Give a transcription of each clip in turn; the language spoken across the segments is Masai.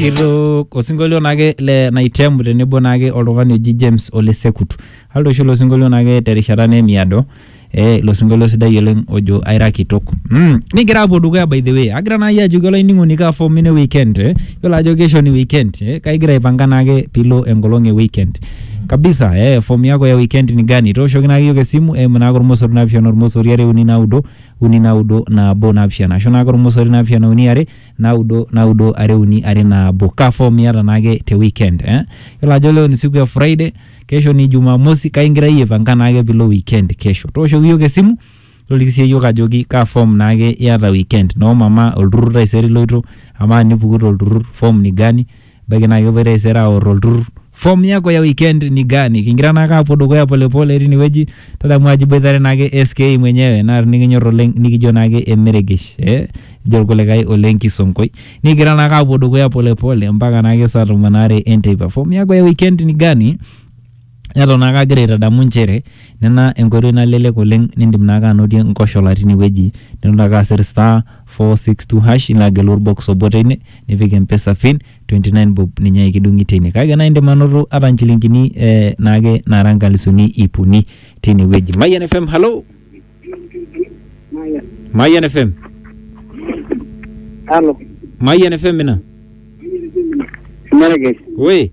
Kitu osinkolio naake le Naitemu tenebo naake oltung'ani oji James Ole Sekut. Aldo oshi ilo sinkolio naake terishata naa emiado. Eh, ilo sinkolio sidai oleng ojo aira kitok. Mm. Nigira apuo dukuya by the way. Agira naai ajoki olainining'oni kaa form ino e weekend eh. Yiolo ajo kesho ni weekend eh. Kake igira aipanga naake piilo enkolong e weekend. Kabisa eh, form yako ya weekend ni gani? Tooshoki naake iyiok esimu eimu naake ormosori naapishana ormosori are uni naudo uni naudo nabo naapishana. Ashu naake ormosori naapishana uni are Naudo naudo are uni are nabo kaa form iyata naake te weekend eh yiolo ajo leo ni siku e Friday kesho ni Jumamosi kake ingira iyie aipanga naake piilo weekend kesho tooshoki iyiok esimu toliki sii iyiok ajoki kaa form naake iyata weekend noo mama olturrur taisere iloito amaa enipuku tolturrur form ni gani. Ebaiki naa kepuoi taisere aor olturrur form yako ya weekend ni gani? Kingira naake aapuo dukuya pole pole tine wueji, tadamu ajo iboitare naake SK mwenyewe naa tinikinyor oleng nikijo naake emeregesh ee ejo irkulikae ole nkisonkoi. Nikigira naake aapuo dukuya pole pole mpaka naake saa tomon aare enteipa. Form yako ya weekend ni gani? Neton naake agira aitadamu inchere nena enkoitoi nalelek oleng nindim naake anotie nkoshola tinewueji nilo naake asir star four six two hash nilo agelu orbox obo teine nipik empesa pin twenty nine bob ninye ake kidung'i teine kake naa indim anoto ata inchilingini eh naake naara inkalisuni ip uni tinewueji. Mayian FM, halo! Mayian FM, Halo, Mayian FM ina? Merkez. Woi!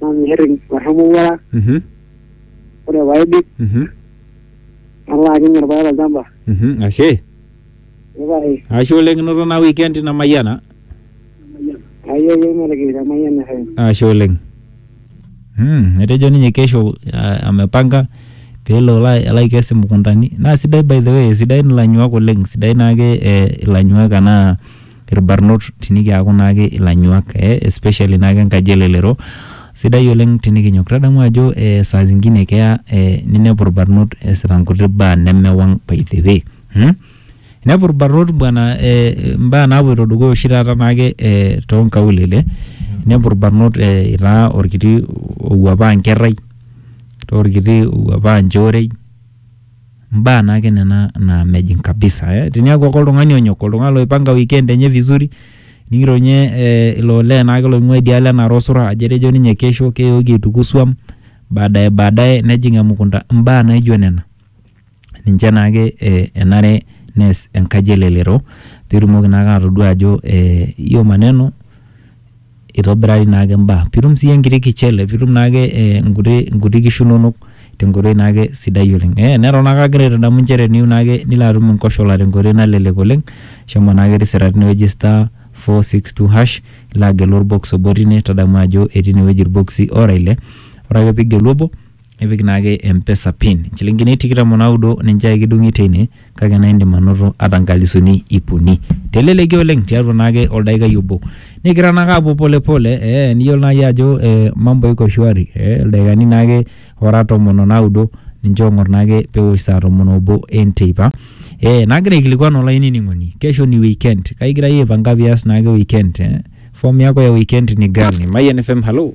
nanu irrereni metumoruara Mhm. ore paidip Mhm. nalo atum irpaek tolchamba Mhm. Ashe. epae Ashe oleng inoto naa weekend ina mayiana. ayie ake matigil temayian FM Ashe oleng. Mm, etejo ninye kesho ah, amepanga pelo alo alo aikes imukuntani. Naa sidai by the way, sidain ilanyuak oleng, sidain naake eh, ilanyuak anaa irbarnot tinikiaku naake ilanyuak eh, especially naake enkaji elelero sidai oleng tinikinyok tadamu ajo eh, saa zingine keya eh, ninepu irbarnot eesita nkuti baa nemewang by the way hmm? inepu irbarnot bwana eh, mbaa naapoito dukuya oshi taata naake eh, toonkaulele inepu irbarnot eh, itaa orkiti owuapaa nkerrai itaa orkiti owuapaa nchoorei Mbaa naake nena naa mejing kabisa eh. Teniaku ake oltung'ani onyok, oltung'ani loipanga weekend enye vizuri ning'iro ninye eh, ilo olee naake loing'ua idialo e Narok Osura ajo etejo ninye kesho keyoki aituku swam baadaye baadaye nejing emukunda. Mbaa naijo nena ninche naake eh enare neas enkaji elelero pitumoki naake atodua ajo eh hiyo maneno eitobirari naake imbaa piitum sii enkiti kichele piitum naake eh, nkuti nkuti kishu inonok tenkoitoi naake sidai oleng eh, neton naake agira aitadamu inchere teniyieu naake nilo atum inkoshola tenkoitoi nalelek oleng shomo naake tisira tinewueji star four six two hash ilo agelu orbox obo tine tadamu ajo etii inewueji irbokisi ora ile ore ake piigelu obo nipik naake empesa pin nchilingini tikitam onaudo ninche ake kidung'i teine kake naa indim anoto ata nkalisuni ip uni teleleki oleng tiatua naake oldaikai obo nikigira naake apuo pole pole eh, niyiolo naai ajo eh, mambo iko shwari eh, ildaikani naake ora tomon onaudo ninche ong'or naake pewosh saa tomon obo enteipa eh, nagira aikilikuan olainining'oni kesho ni weekend kaigira iyie aipanga pias naake weekend eh? form yako ya weekend ni gani mayian fm halo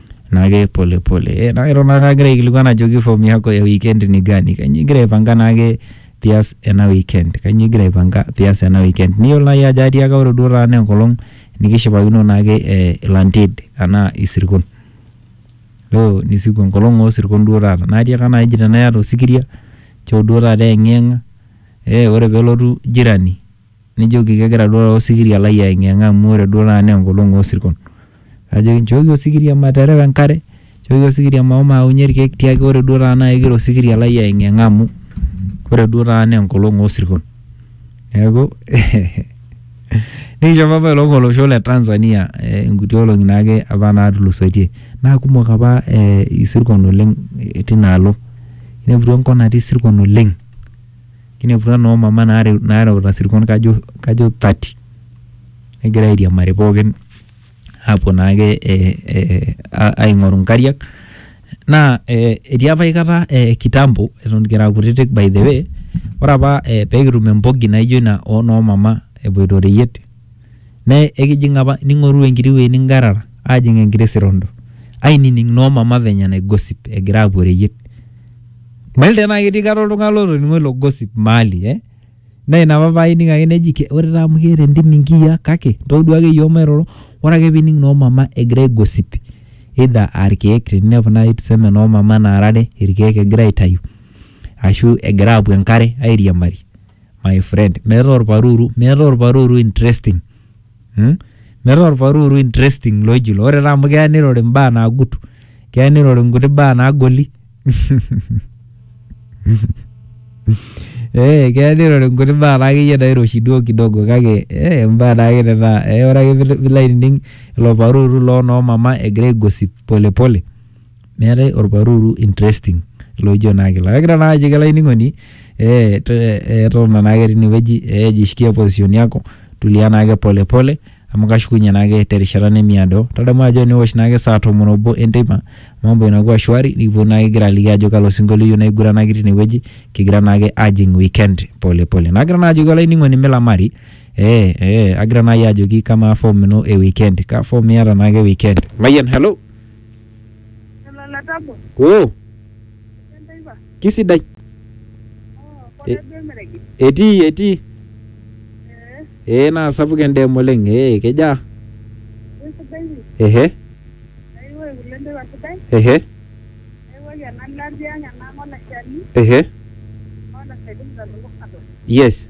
naake pole pole. Eh, naake eton naake agira aikilikuan ajoki form yako ya weekend ni gani? Kanyoo igira aipanga naake pias ena weekend? Kanyoo igira aipanga pias ena weekend? Niyiolo nai ajo atiaka ore duo taata naa enkolong nikishipakino naake eh ilanted anaa isirkon. Leo ni siku enkolong osirkon duo taata. Natiaka nai eji tenaa iyata osikiria nchoo duo taata eyeng'iyeng'a eh ore pelotu jirani. Nejoki, Kegira duo taata osikiria lai aeng'ieng'a amu ore duo taata naa enkolong oo sirkon. Najoki, Nchooki osikiria materewa enkare, nchooki osikiria mahomo aaunye ilkeek tiaki ore duo taata naa kegira osikiria lai aeng'ieng'a amu ore duo taata naa enkolong oo sirkon. Neeku nikishopo apa ilook olosho le Tanzania inkuti olong'i naake apa naatulusoitie. Naa kumok apa isirkon oleng tinaalo. Inepu duo enkop natii isirkon oleng Kineputwa noo mama naareuta sirkon kajo kajo thirty egira airiamari pookin aapuo naake eh aing'oru inkariak naa eh etii apa aikata eh kitambo eton kira kutitik by the way ore apa eh pekitum empoki naijo ina onoo mama epuoito ireyiet. Naa ekijing apa ning'oru enkiti wueji ningarara aajing enkiti sirondo ainining noo mama venye nai gossip egira aapuo oreyiet. Mayiolo tenaa ketii kata oltung'ani lotoning'o ilo gossip mahali eh naa ina apa paaning ake neji ore taa amu keeta entim inkiyia kake ntodua ake iyiok mairoro. Ore ake piining noo mama egira ai gossip either aa irkiek teninepu naai tuseme noo mama naara are irkiek egira aitayu ashu egira aapuo enkare airiamari my friend meeta orparuru meeta orparuru interesting hmm? meeta orparuru interesting loji ilo ore taa amu keya nirori imbaa naagut keya nirori inkuti baa naagoli Eh, keya nirori inkuti baa naakeyie nairoshi duo kidogo kake eh, imbaa naake nena eh, ore ake pilo pilo ainining ilo paruru loo noo mama egira aigosip polepole pole. meetae olparuru interesting loijo naa kila kagira naa ajoki olainining'oni eh, to- eh, totona naake tinewueji eh, jishikia position yako tulia naake pole pole amu kashukunye naake terishata nemiado tadamu ajo eniwosh naake saa tomon obo enteipa mambo inakuwa shwari nikipuo naake kigira aliki ajo kalo sinkolio iyieu naiguranaki tinewueji kigira naake ajing weekend pole pole nagira naa ajoki olainining'oni milamari eh, eh, agira naai ajoki kamaa form ino e weekend kaa form iyata naake e weekend mayian hello oo kisidai etii etii ee naa sapuk endeem oleng ee kejaa ehe ehe ehe yes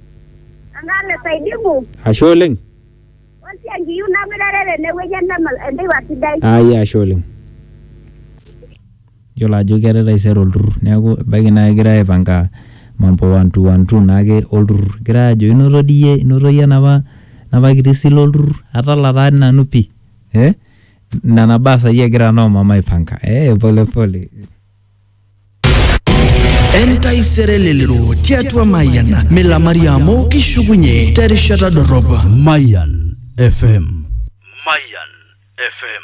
Eng'arre saidibu, Ashe oleng. olsi enkiyu namirare tenewueji enemal enteipa sidai. Ai ashe oleng. Yiolo ajo keetae taisere olturrur neeku ebaiki naa kegirae aipanga mambo one two one two naake olturrur. Egirae aajo inoto dii iyie inoto iyie enapa enapa kiti sile olturrur atala taa dii nanu pii ee nena baa saai egira noo mama aipanga ee pole pole entaisere lelero tiatua mayian milamari amu kishukunye terishata dorrop Mayan FM. Mayan FM.